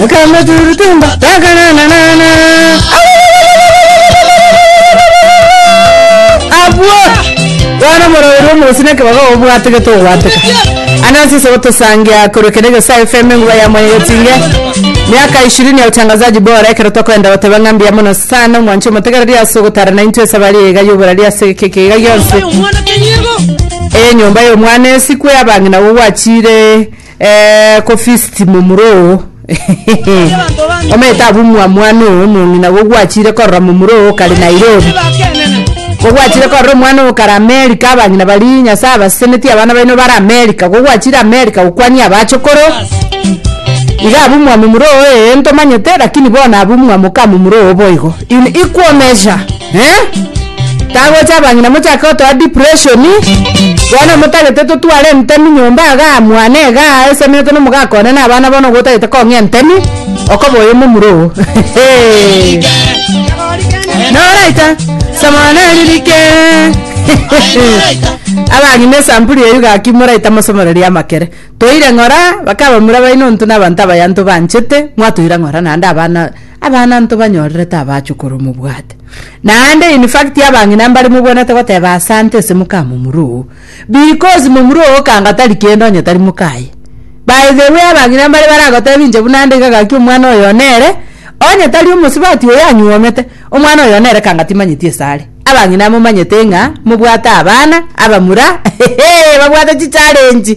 Mukameturutumba takanananana. Abwo bwana morowerwa omosi na ekebaga obwateke tobwateka anasi sobo tosangia korokera egesayo fm enguba ya mwaye gotinge miaka ishirini ya utangazaji bora ekero tokoenda goteba ng'a mbuya mono sana omwancho omotegereri ase ogotara na intwe esabari eye iga yoborari ase ekeke iga gionsi eye nyomba y'omwana esikwe abang'ina gogwachire Eh, ko fist momura oo omanyete abu mwa mwana oo omong'ina gogwachire korora momura oo kare nairobi gogwachire korora omwana oo kare amerika abang'ina baria nyasaye abasesenetie abana baino bare amerika gogwachire amerika gokwania abachokoro iga abu mwa momura oo ee ntomanyete lakini bono abu mwa moka momura oo boigo in equal measure Eh? Tagocha abang'ina mochake gotoa depression. Bono motagete totware entemi nyomba igaa mwane igaa aesemerete na omogaka one na abana bono gotagete kong'ea entemi okoba oyo momura oo. Noraita samana ririke. abang'ina esampuli eyio gaki moraita mosomoreria amakere. Toire ng'ora bakabamura baino ntu na abanto abayanto banchete mwatoira ng'ora naende abana Abana ntobanyorere tabaachwe korwa mobwate. Naende in fact abang'ina mbare mobwenerete goteba asante ase moka momura oo because momura oo okanga tari kende onye tari moka aye. By the way abang'ina mbare baragoteba inche buna ande iga gaki omwana oyo nere onye tari omosubati oyo anyuomete omwana oyo nere kanga timanyeti ase are. Abang'ina momanyete ng'a mobwate abana abamura hehe babwate chichallenge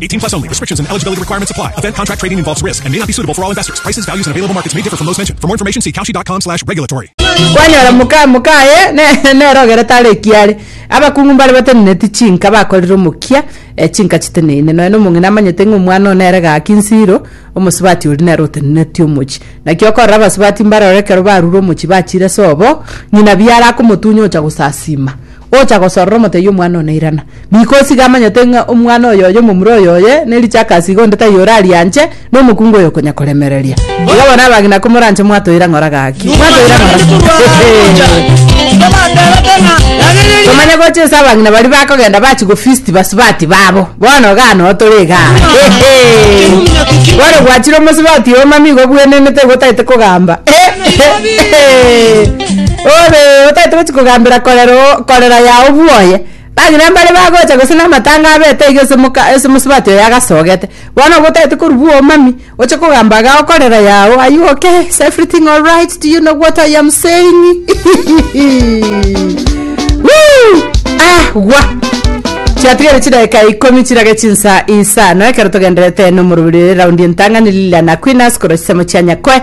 18 plus only. Restrictions and eligibility requirements apply. Event contract trading involves risk and may not be suitable for all investors. Prices, values, and available markets may differ from those mentioned. For more information, see kalshi.com slash regulatory. kwanyora moka mokaye ne- nerogere tare ekiare abakungu mbare bateneneti chinka bakorire omokia eh, chinka chiteneine nonya na omong'ina amanyete ng'a omwana one ere gaki nsiro omosubati oria nere oteneneti omochi naki okorora abasubati mbaroro ekero barure omochi bachire sobo ng'ina biara akomotunya ocha gosasima Gocha gosorora omotebi omwana one irana. Biko osige amanyete ng'a omwana oyoyo omomura oyoye ne richako ase igo onde taiyo orarianche, na omokungu oyo okonya koremereria. Iga bono abang'ina komoranche mwatoira ng'ora gaki. Mwatoira ng'ora. Komanya gocha ase abang'ina baria bakogenda bachi gofeast basubati babo. Bono igaa no tore igaa. Bono gwachire omosubati oyo mama igo obwenenete igo otaete kogamba. Ore otagete gochia kogambera korera oo korera yao bwoye. Bang'ina mbare bagocha gose na amatanga abete iga ase moka ase mosubati oyo agasogete. Bono obo otagete korwa bwa omami, oche kogamba agao korera yao are you okay? Is everything alright? Do you know what I am saying? Woo! Ah, gwa! chiatigere chidagika ikomi chirage chinsa isano ekero togenderete nomorobiri raundi entang'ani liliana kwinas korwa chisemo chia nyakoe